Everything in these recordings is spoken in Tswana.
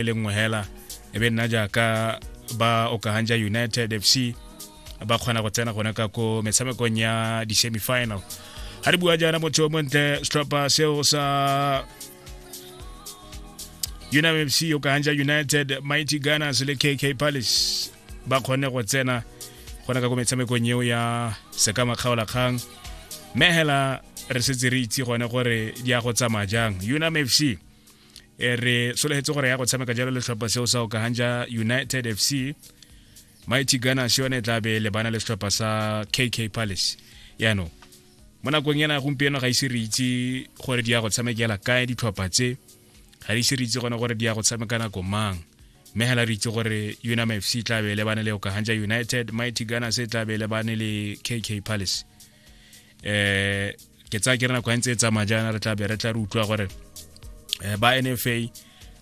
e le nngwe hela e be nna jaaka ba okagang ja united fc ba kgona go tsena gone ka ko metshamekong ya di-semifinal ga re bua jaana motho o montle setlhopha seo sa unam fc okagang ja united mighty gunners le kk palace ba kgone go tsena gona ka ko metshamekong eo ya sekama kgaolakgang mme hela re setse re itse gone gore di ya go tsamaya jang unam fc e re solegetse gore ya go tshameka jalo letlhopha seo sa okagang ja united fc mighty gunners yone e tla be lebana le setlhopha sa kk palace yaanong mo nakong ena gompieno ga ise re itse gore di ya go tshamekela kae ditlhopha tse ga di ise re itse gone gore di ya go tshameka nako mang mme hela re itse gore unam fc e tla be lebane le okaganja united mighty gunners e tla be lebane le kk palace eh ke tsaya ke re nako ntse e tsamaya jaana re tla be re tla re utlwa gore eh, ba nfa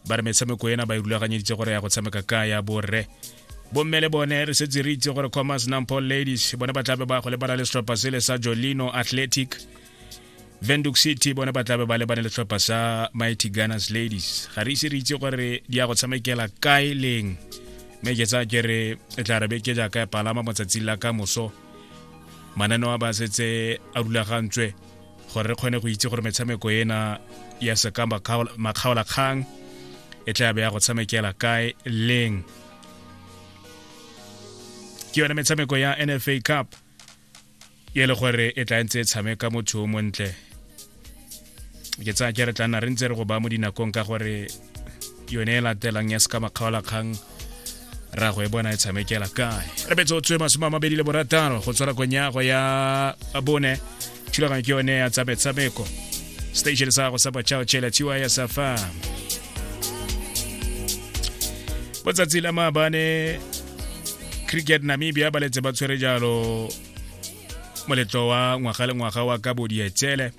ba re metshameko ena ba e rulaganyeditse gore ya go tshameka ka ya borre bomme le bone re setse re itse gore commerce nampo ladies bone ba tlabe ba go lebana le setlhopha sele sa jolino athletic venduk city bone ba tlabe ba lebane le setlhopha sa mighty gunners ladies ga re ise re itse gore di ya go tshamekela kae leng mme ke tsaya ke re e tla re beke jaaka ya palama motsatsing la ka moso mananeo a ba setse a rulagantswe gore re kgone go itse gore metshameko ena ya seka makgaolakgang e tla be ya go tshamekela kae leng ke yone metshameko ya nfa cup e le gore e tla ntse e tshameka motho o montle ke tsaya ke re tla nna re ntse re go ba mo dinakong ka gore yone e latelang ya seka makgaolakgang ra go e bona e tshamekela kae re betse o tswe masome a mabedi le borataro go tswara konyago ya bone thulaganyo ke yone ya tsametshameko station sa go sa bachao chela tiwa ya safa botsatsi la maabane cricket namibia ba letse ba tshwere jalo moletlo wa ngwaga le ngwaga wa ka bodietsele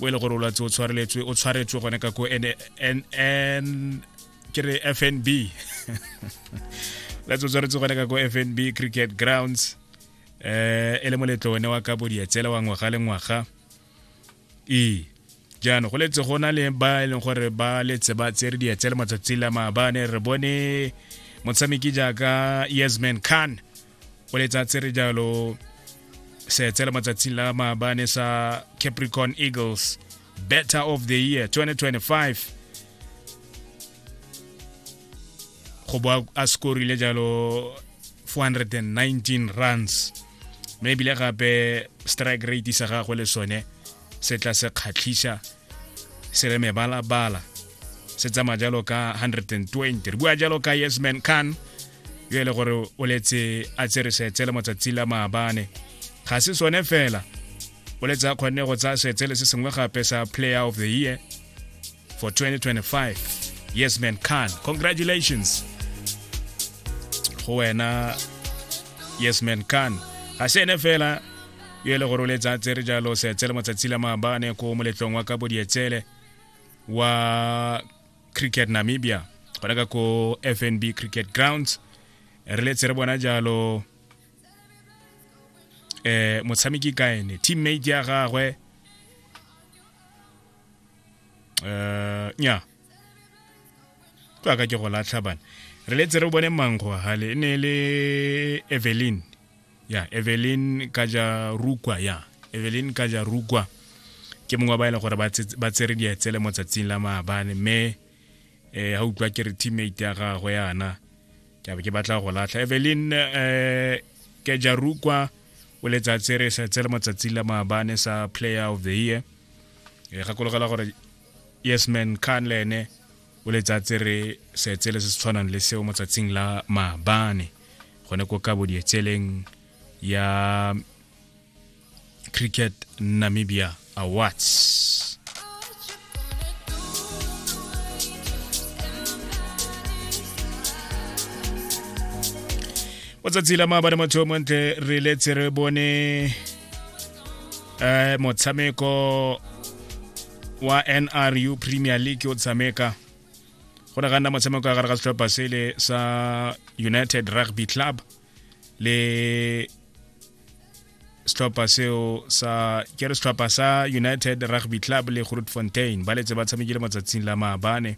o e le gore o lwatse o tshwareletswe o tshwaretswe gone ka ko ke re fnb latse o tshwaretswe gone ka ko fnb cricket grounds um e le moletlo one wa ka bodietsele wa ngwaga le ngwaga ee jaanong go letse go na le ba e leng gore ba letse ba tsere dietsele matsatsi la maabane re bone motshameki jaaka yasman khan o letsa tsere jalo seetsele matsatsing la maabane sa capricorn eagles better of the year 2025 go bo a scorile jalo 419 runs mme ebile gape strike rate sa gagwe le sone se tla se kgatlhisa se re mebalabala se tsamaya jalo ka 120 re bua jalo ka yesman khan yo e le gore o letse a tsere setse le matsatsi la maabane ga se sone fela o letse a kgonne go tsaya setse le se sengwe gape sa player of the year for 2025 yes man khan congratulations go wena yes man khan ga se ene fela yo e le gore o letsa tsere jalo seetsele matsatsi la maabane ko moletlong wa ka bodietsele wa cricket namibia gona ka ko fnb cricket grounds re letse re bona jalo eh motshameki kaene teammate ya gagwe uh nya ka ka ke go latlha bana re letse re bone mango hale e ne le evelyn ya evelyn ka ja rukwa ya evelyn ka ja rukwa ke mongwe ba e leng gore ba tsere dietsele mo tsatsing la maabane mme um ga utlwa ke re teammate ya gagwe yana ke be ke batla go latlha evelyn um eh, kejarukwa o letsatsi re setse le mo tsatsing la maabane sa player of the year e gakologela gore yes man khan le ene o letsatse re setse le se se tshwanang le seo motsatsing la maabane gone ko ka bodietseleng ya cricket namibia awards o tsatsi la maabane motho yo montle re letse re bone eh motshameko wa NRU Premier League o tshameka go ne ga nna motshameko ya gare ga setlhopha sele sa United Rugby Club le setlhopha seo sa ke re setlhopha sa United Rugby Club le Grootfontein ba letse ba tshamekile matsatsing la maabane